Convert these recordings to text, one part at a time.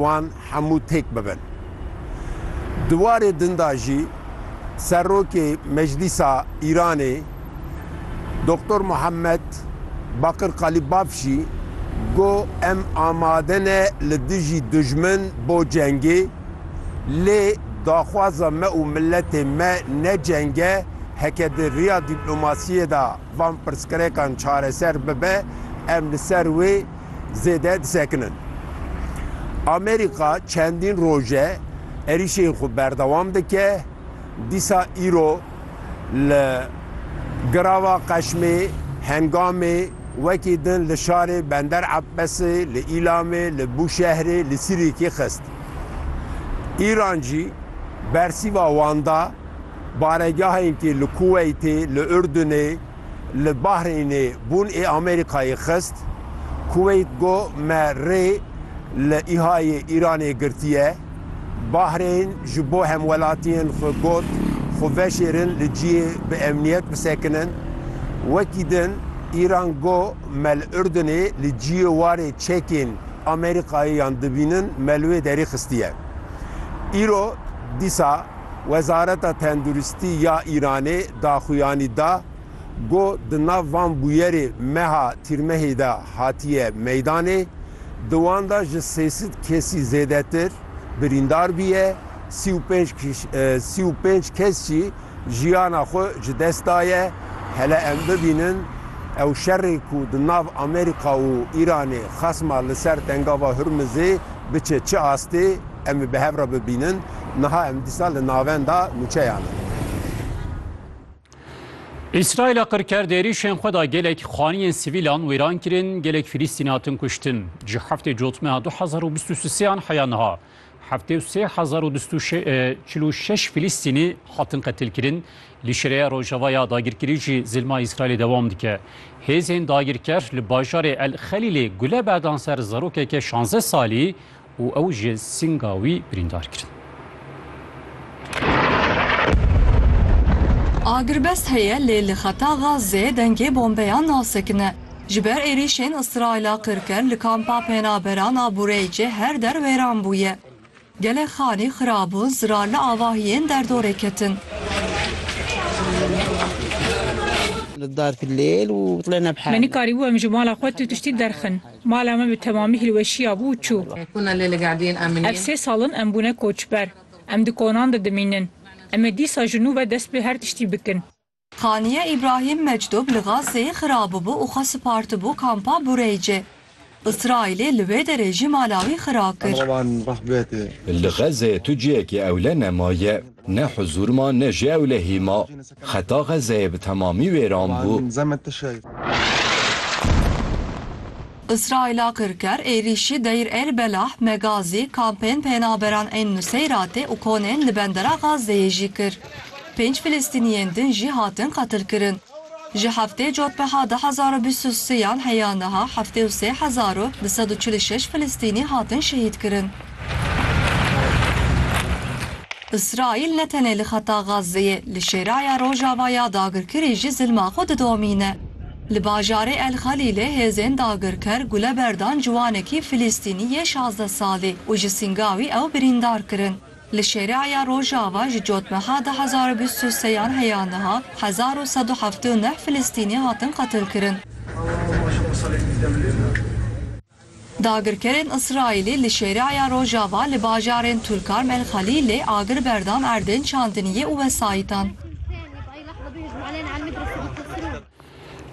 wan hemû têk bibin. Di warê din de jî Serokê Meclîsa Îranê Doktor Muhammed Bakir Qalîbaf jî got em amade ne li dijî dijmin bo cengê lê daxwaza me û miletê me ne ceng e heke di riya dîplomasiyê de van pirsgirekan çareser bibe em li ser wê zêde disekinin. Amerîka çendîn roj e êrîşên xwe berdewam dike, dîsa îro li Girava Qeşmê, Hengamê, wekî din li şarê Bender Ebbesê, li Îlamê, li Bûşehrê li Sirîkê xist. Îran jî bersîva wan da baregehên ku li Kuweytê, li Urdunê, li Bahreynê bûn ê Amerîkayê xist. Kuweyt got me rê li îhayê Îranê girtiye. Bahreyn ji bo hemwelatiyên xwe got xwe veşêrin li ciyê bi emniyet bisekinin. Wekî din Îran got me li Urdunê li ciyê warê çekên Amerîkayê yan dibînin me li wê derî xistiye. Îro dîsa Wezareta Tenduristî ya Îranê daxuyanî da ku di nav van bûyerê meha Tîrmehê de hatiye meydanê, di wan de ji sê sed kesî zêdetir birîndar bûye, sî û pênc sî û pênc kes jî jiyana xwe ji dest daye. Hele em bibînin ew şerê ku di nav Amerîka û Îranê xasma li ser Tengava Hurmizê biçe çi astê. Em ê bi hev re bibînin. Niha em dîsa li navenda nûçeyan in. Îsraîla qir kerd êrîşên xwe da gelek xaniyên sivîlan wêran kirin, gelek Filîstînî hatin kuştin. Ji heftê cotmeha du hezar û bîst û sêan heya niha heftê û sê hezar û du stû çil û şeş Filîstînî hatin qetilkirin. Li şireya rojava ya dagirkirî jî zilma Îsraîlê dewam dike. Hêzên dagirker li bajarê El Xelîlê gule berdan ser zarokeke şanzdeh salî û ew ji sînga wî birîndar kirin. Agirbest heye lê li xeta Gazeyê dengê bombeyan nasekine. Ji ber êrîşên Îsraîla qirker li kampa penaberan a Bureycê her der wêran bûye. Gelek xanî xirab bûn, zirar li avahiyên derdorê ketin. Me nikarîbû em ji mala xwe tu tiştî derxin. Mala me bi temamî hilweşîya bû û çû. Ev sê sal in em bûne koçber. Em di konan de dimînin. Em ê dîsa ji nû ve dest bi her tiştî bikin. Haniye Îbrahîm Mecdûb li Gazzeyê xirabûbû û xwe sipartibû kampa Bureycê. Îsraîlê li wê derê jî mala wî xira kir. Li Gazzeyê tu cihekî ewle nemaye. Ne huzûr ma ne jî ewlehî ma. Xeta Xezzeyê bi temamî wêran bû. Îsraîla kirker êrîşî Deyr El Belah, Megazî, kampên penaberan ên Nuseyratê û konên li Bendera Xazzeyê jî kir. Pênc Filistîniyên din jî hatin qetilkirin. Ji heftê cotmeha du hezar û bîst û sêyan heya niha heftê û sê hezar û du sed û çil û şeş Filistînî hatin şehîdkirin. Îsraîl ne tenê li xeta Gazeyê, li Şêraya Rojava ya dagirkirî jî zilma xwe didomîne. Li bajarê El Xelîlê hêzên dagirker gule berdan ciwanekî Filistînî yê şazdeh salî û ji sînga wî ew birîndar kirin. Li Şêreaya Rojava ji cotmeha du hezar û bîst û sê yan heya niha hezar û sed û heftê û neh Filistînî hatin qetilkirin. Dagirkerên Îsraîlî li Şêreaya Rojava li bajarên Tulkarm El Xelîlê agir berdan erdên çandiniyê û wesayîtan.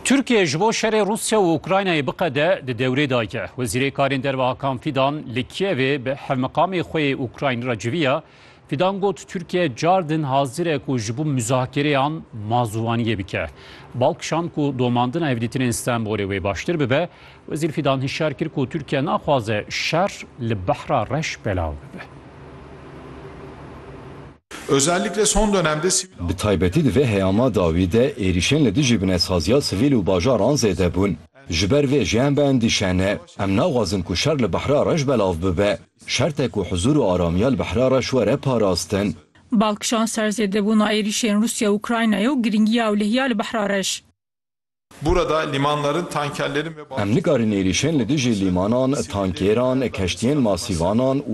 Tirkiye ji bo şerê Rûsya û Ukraynayê biqede di dewrê de ye. Wezîrê Karên Derve Hakan Fîdan li Kiyevê bi hevmiqamê xwe yê Ukraynî re civiya. Fîdan got Tirkiye car din hazir e ku ji bo muzakereyan mazûvaniyê bike. Bal kişand ku domandina hevdîtinên Stenbolê wê baştir bibe. Wezîr Fîdan hişyar kir ku Tirkiye naxwaze şer li Behra Reş belav bibe. Özellikle son dönemde sivil Bi taybetî di vê heyama dawî de êrîşên li dijî binetsaziya sivîl û bajaran zêde bûn. Ji ber vê jî em biendîşe ne. Em naxwazin ku şer li Behra Reş belav bibe. Şert e ku huzûr û aramiya li Behra Reş were parastin. Bal kişand ser zêdebûna êrîşên Rûsya û Ukraynayê û girîngiya ewlehî ya li Behra Reş. Burada limanların, tankerlerin ve Em nikarin êrîşên li dijî limanan, tankêran, keştiyên masîvanan û